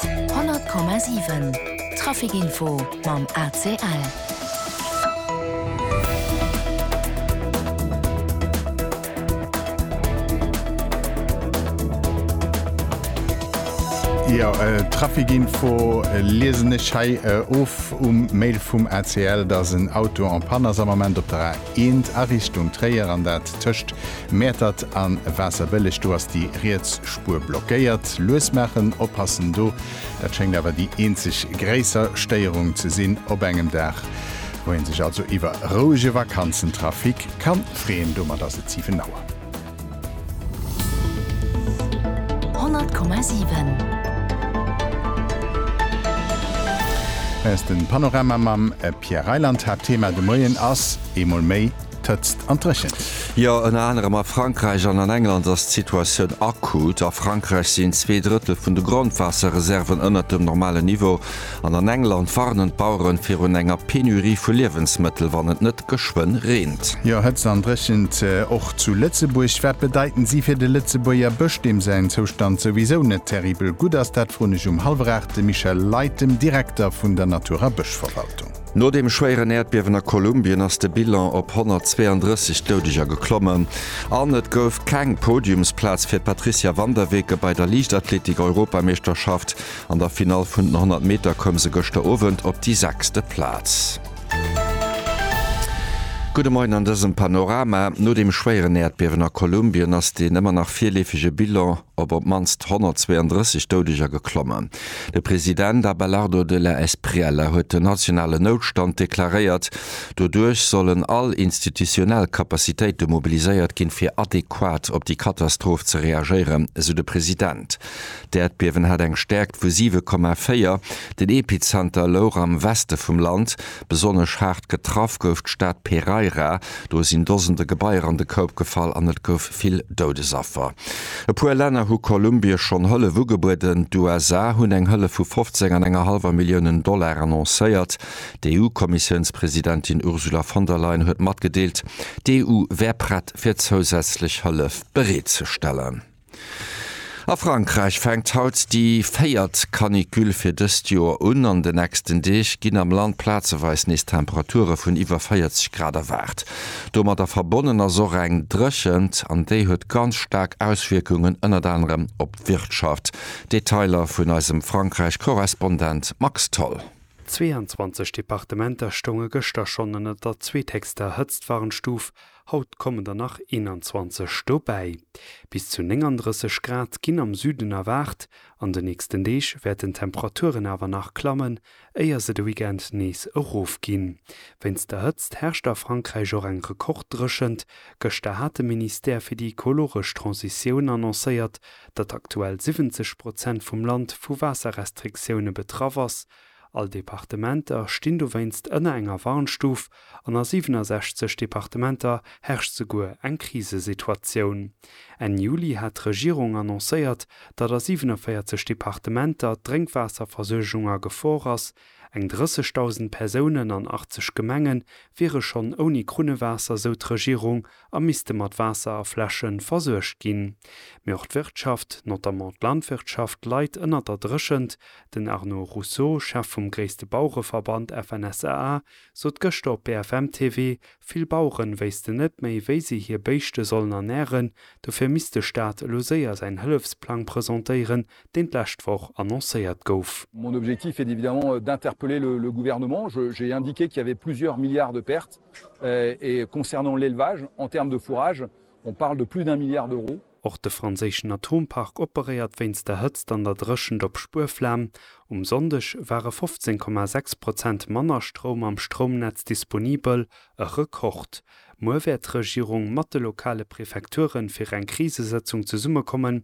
100,7 Trafic Info mam ACL. Jo Trafic Info liesen ech hei of um Mail vum ACL, datt en Auto en panne ass am Ament op der A1 a Richtung Tréier, an dat tëscht Mäertert an Waasserbëlleg, do ass déi riets Spuer blockéiert. Lues maachen, oppassen do. Dat schéngt awer déi eenzeg gréisser Stéierung ze sinn op engem Dag, wou een sech also iwwer rouege Vakanzentrafic kann freeën. Domat ass et 7 Auer. 100,7. Hei ass den Panorama mam Pierre Reyland. Haaptthema de Moien ass eemol méi. d'Hëtzt an d'Dréchent. Jo, ënner anerem a Frankräich an an England ass d'Situatioun akut. A Frankräich sinn zwee Drëttel vun de Grondwaasserreserven ënnert dem normalen Niveau. An an England warnen d'Baueren virun enger Penurie vu Liewensmëttel, wann et net geschwënn reent. Jo, Hëtzt an Dréchent och zu Lëtzebuerg. Wat bedeiten si fir de Lëtzebuerger Bësch, deem säin Zoustand souwisou net terribel gutt ass? Dat froen ech um hallwer aacht de Michel Leit, dem Direkter vun der Natur a Bëschverwaltung. No dem schwéieren Äerdbiewen a Kolumbien ass de Bilan op 132 Doudeger geklommen an et gouf keng Podiumsplaz fir d'Patricia van der Weken. Bei der Liichtathletik-Europameeschterschaft an der Finall vun den 100 Meter koum se gëschter Owend op déi sechste Plaz. Gudde Moien an dësem Panorama. No dem schwéieren Äerdbiewen a Kolumbien ass deen ëmmer nach virleefege Bilan, op op d'mannst 132 Doudeger geklommen. De President Abelardo de la Espriella huet den nationalen Noutstand deklaréiert. Doduerch sollen all institutionell Capacitéite mobiliséiert ginn, fir adequat op déi Katastroph ze reagéieren, esou de President. D'Äerdbiewen hat eng Stäerkt vu 7,4. Den Epizenter louch am Weste vum Land. Besonnesch haart getraff gouf d'Stad Pereira. Do sinn Dosende Gebaier an de Koup gefall an et gouf vill Doudesaffer. E puer Länner hu Kolumbie schonn Hëllef ugebueden. D'USA hunn eng Hëllef vu 15 an enger hallwer Milliounen Dollar annoncéiert. D'EU-Kommissiounspresidentin Ursula von der Leyen huet matgedeelt, d'EU wär prett fir zousätzlech Hëllef bereet ze stellen. A Frankräich fänkt haut déi véiert Canicule fir dëst Joer un. An de nächsten Deeg ginn am Land plazeweis nees Temperature vun iwwer 40 Grad erwaart. Domadder verbonnen ass och eng Dréchent an déi huet ganz staark Auswierkungen ënnert anerem op d'Wirtschaft. Detailer vun eisem Frankräich-Korrespondent Max Tholl. 22 Departementer stounge gëschter schonn ënnert der zweetheechster Hëtztwarnstuf Haut kommen der nach 21 dobäi. Bis zu 39 Grad ginn am Süden erwaart. An de nächsten Deeg wäerten d'Temperaturen awer nach klammen, éier se de Weekend nees erofginn. Wéinst der Hëtzt herrscht a Frankräich och eng Rekorddréchent. Gëschter hat de Ministère fir déi ekologesch Transitioun annoncéiert, datt aktuell 70 Prozent vum Land vu Waasserrestriktioune betraff ass, All Departementer stinn dowéinst ënner enger Warnstuf an a 67 Departementer herrscht souguer eng Krisesituatioun. Enn Juli hat d'Regierung annoncéiert, datt a 47 Departementer d'Drénkwaasserversuergung a Gefor ass, eng 30.000 Persounen an 80 Gemenge wiere schonn ouni Krunnewaasser, sou d'Regierung. a misste mat Waasser a Fläsche versuergt ginn. Mee och d'Wirtschaft, notamment d'Landwirtschaft, leit ënnert der Dréchent. Den Arnaud Rousseau, Chef vum gréisste Bauereverband FNSEA, sot gëschter op BFM TV, vill Baueren wéissten net méi, wéi si hir Béischte sollen ernären. Dofir misst de Staat elo séier säin Hëllefsplang presentéieren, deen d'lescht Woch annoncéiert gouf. Mon objectif est évidemment d'interpeller le gouvernement. J'ai indiqué qu'il y avait plusieurs milliards de pertes. Och de franséischen Atompark operéiert wéinst der Hëtzt an der Dréchent op Spuerflam. Um Sonndeg ware 15,6 Prozent manner Stroum am Stroumnetz disponibel, e Rekord. Muer wäert d'Regierung mat de lokale Prefekture fir eng Krisesëtzung zesummekommen,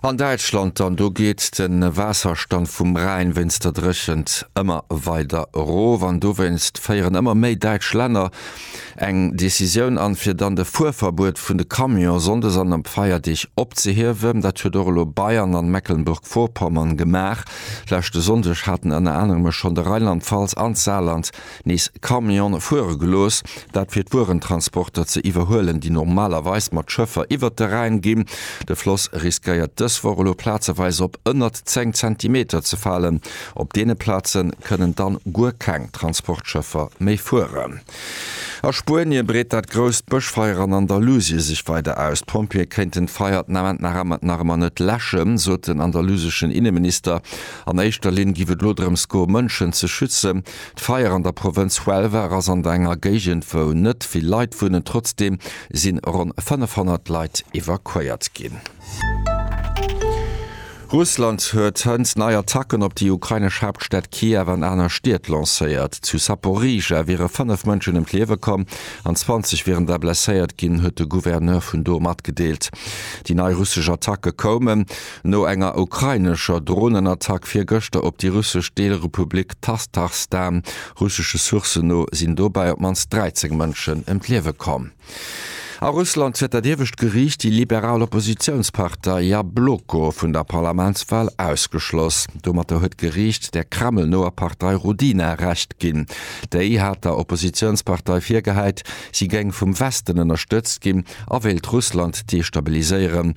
An Däitschland dann, do geet de Waasserstand vum Rhäin wéinst der Dréchent ëmmer weider erof an dowéinst féieren ëmmer méi däitsch Länner eng Decisioun an, fir dann de Fuerverbuet vun de Camion sonndes an op Feierdeeg opzehiewen. Dat huet och elo Bayern an Mecklenburg-Vorpommern gemaach. Leschte Sonndeg haten ënner anerem e schonn de Rheinland-Pfalz an d'Saarland nees Camione fuere gelooss, dat fir d'Wuerentransporter ze iwwerhuelen, déi normalerweis mat Schëffer iwwert de Rhäin ginn. De Floss riskéiert dës Woch elo plazeweis op ënnert 10 Zentimeter ze falen. Op deene Plaze kënnen dann guer keng Transportschëffer méi fueren. A Spuenie breet dat grousst Bëschfeier an Andalusie sech weider aus. D'Pompjeeë kéinten d'Feier den Ament nach ëmmer net läschen, sot den andaluseschen Inneminister. An éischter Linn géif et elo drëms goe Mënschen ze schützen. D'Feier an der Provënz Huelva ass an der enger Géigend wou net vill Leit wunnen, trotzdeem si ronn 500 Leit evakuéiert ginn. Russland huet hënt nei Attacken op déi ukrainesch Haaptstad Kiew an aner Stied lancéiert. Zu Saporizhia wiere 5 Mënschen ëm d'Liewe komm an 20 wieren der blesséiert ginn, huet de Gouverneur vun do matgedeelt. Déi nei russesch Attacke koumen, No enger ukrainescher Dronenattack virgëschter op déi russesch Deelrepublik Tastachstan, russesche Sourcen no, sinn dobäi op d'mannst 13 Mënschen ëm d'Liewe komm. A Russland huet dat iewescht Geriicht déi liberal Oppositiounspartei Jabloko vun der Parlamentswal ausgeschloss. Domatter huet d'Geriicht der Kreml-noer Partei Rodina Recht ginn. Déi hat der Oppositiounspartei virgehäit, si géing vum Westen ënnerstëtzt ginn a wéilt Russland destabiliséieren.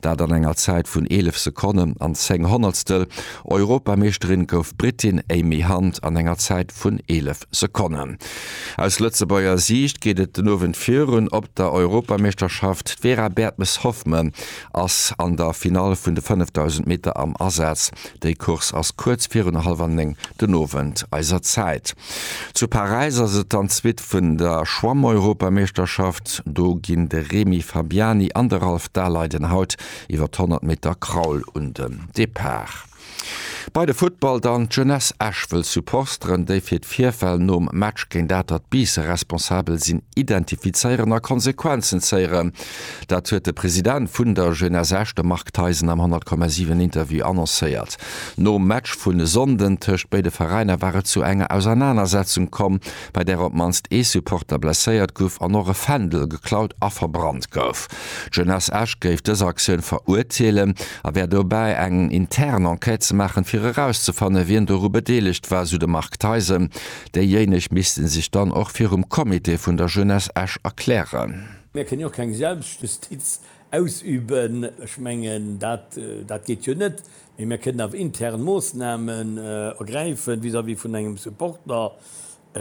Dat an enger Zäit vun 11 Sekonnen an 10 Honnertstel. Europameeschterin gouf d'Britin Amy Hunt an enger Zäit vun 11 Sekonnen. Aus Lëtzebuerger Siicht geet et den Owend virun op der Europameeschterschaft. D'Vera Bertmes-Hoffmann ass an der Finall vun de 5.000 Meter am Asaz. Déi Course ass kuerz virun hallwer néng den Owend eiser Zäit. Zu Paräis ass et dann d'Suite vun der Schwammeuropameeschterschaft. Do ginn de Remy Fabiani an de Ralph Daleiden haut iwwer d'Honnert Meter Kraul un den Depart. Bei de Futtball dann, D'Jeunesse Esch wëll Supporsteren, déi fir d'Virfäll nom Match géint Atert Biissen responsabel sinn, identifizéieren a Konsequenzen zéieren. Dat huet de President vun der Jeunesse Esch, de Marc Theisen am 100,7 Interview annoncéiert. Nom Match vun e Sonnden tëscht béide Veräiner war et zu enger Ausernanersetzung komm, bei där op d'mannst ee Supporter blesséiert guff an och e Fändel geklaut a verbrannt gouf. D'Jeunesse Esch géif dës Aktioun verurteelen a wär dobäi eng intern Enquête ze maachen, fir erauszefanne wien doru bedeelegt war, sou de Marc Theisen. Déijéineg misste sech dann och virum Comité vun der Jeunesse Esch erklären. Mir kënnen jo och keng Selbstjustiz ausüben. Ech mengen, dat geet jo net. Mee mir kënnen awer intern Moossnamen ergräifen vis-à-vis vun engem Supporter,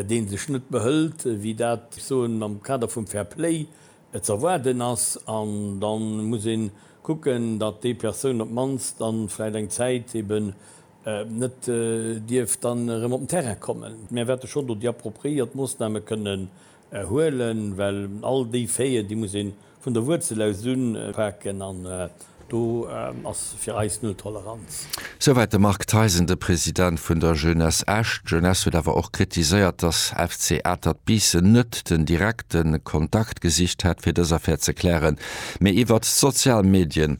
dee sech net behëlt, wéi dat, ech soen, am Kader vum Fair Play ze erwaarden ass. An da muss ee kucken, datt déi Persoun op d'mannst dann vläicht eng Zäit eben net dierf dann erëm op den Terrain kommen. Mir wäerte schonn do déi appropriéiert Moossname kënnen huelen, well all déi Faiten, déi muss ee Vun der Wuerzel aus unpaken an do ass fir eis null Toleranz. Souwäit de Marc Theisen, de President vun der Jeunesse Esch. D'Jeunesse huet awer och kritiséiert, datt FC Atert Biissen net den direkte Kontakt gesicht hätt, fir dës Affär ze klären, mee iwwert d'sozial Medien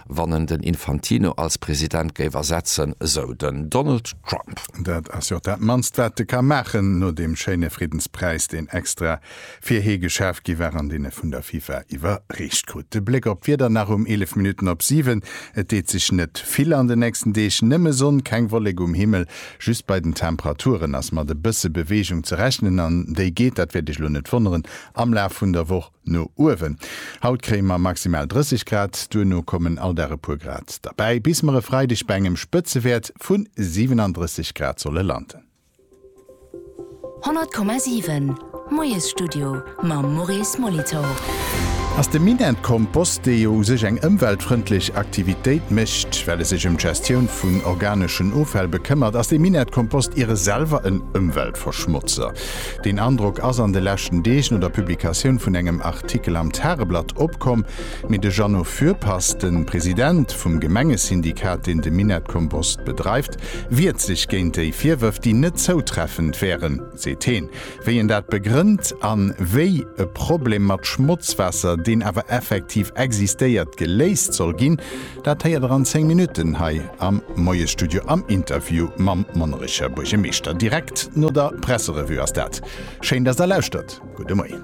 wann en den Infantino als President géif ersetzen, esou den Donald Trump. Dat ass jo och dat mannst wat e ka maachen, no deem schéine Friddenspräis, deen extra fir hie geschaaft gi war an deen e vun der FIFA iwwerreecht krut. De Bléck op d'Wieder nach um 11 Minutten op 7, Et deet sech net vill an de nächsten Deeg, nëmme Sonn, keng Wollek um Himmel. Just bei den Temperaturen ass mat e bësse Beweegung ze rechnen an déi geet, dat wäert Iech elo net wonneren, am Laf vun der Woch No uewen. Haut kréie mer maximal 30 Grad, duerno kommen all Dag e puer Grad derbäi, bis mer e Freideg bei engem Spëtzewäert vu 37 Grad solle landen. 100,7 Moiesstudio mam Maurice Molitor. Ass de Minett Kompost, dee jo u sech eng ëmweltfrëndlech Aktivitéit mécht, well e sech ëm d'Gestioun vun organeschen Offäll bekëmmert, ass de Minett Kompost iere selwer en Ëmweltverschmotzer? Deen Androck ass an de leschten Deeg no der Publikatioun vun engem Artikel am Tageblatt opkomm, mee de Jeannot Fürpass, de President vum Gemengesyndikat, deen de Minettkompost bedreift, wiert sech géint déi Virwërf, déi net zoutreffend wären, seet heen. Wéi een dat begrënnt an wéi e Problem mat Schmotzwaasser, deen awer effektiv existéiert, geléist soll ginn, Dat héiert der an 10 Minutten hei am Moiesstudio am Interview mam Monnerecher Buergemeeschter. Direkt no der Presserevue ass dat. Schéin, dass der lauschtert. Gudde Moien.